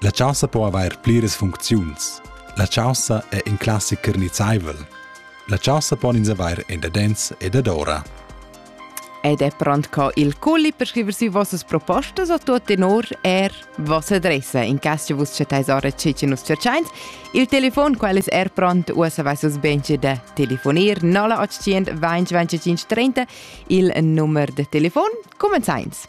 La chaussa po avair pliras funcziuns. La chaussa è in classicher nizzaivel. La chaussa pon ins avair endadens e dadora. Ed è pront co il culli per scriver sü vossas propostas o tuot tenor er vossa adressa in cas che vus chattais ora ce che nus cerchains. Il telefon qual es er pront uossa vassas benche da telefonir 0800 20 25 30 il numero de telefon comenzains.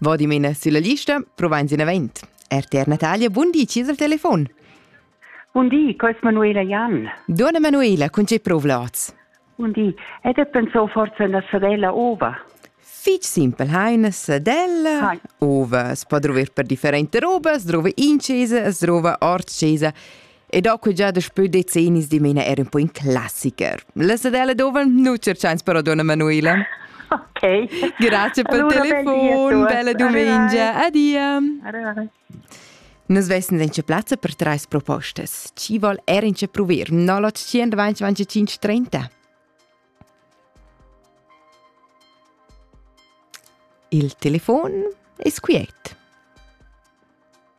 Va dimena sulla lista, provains in event. RTR Natalia, buon di, ci al telefon. Buon di, quais Manuela Jan. Donna Manuela, con ce provlats? Buon di, ed è pensò forse una sadella ova? Fich simpel, ha una sadella Hai. ova, si può trovare per differenti robe, si trova incesa, si trova hors cesa. E da que già daspö decennis dimena er un po in classiker. La sedella dove nu cerchans però donna Manuela. Ok. Grazie per allora, telefon, bella domenica. Adia. Arrivare. Nus vessen in plazza per treis propostes. Ci vol er in ce prover 0800 20 30. Il telefon es quiet.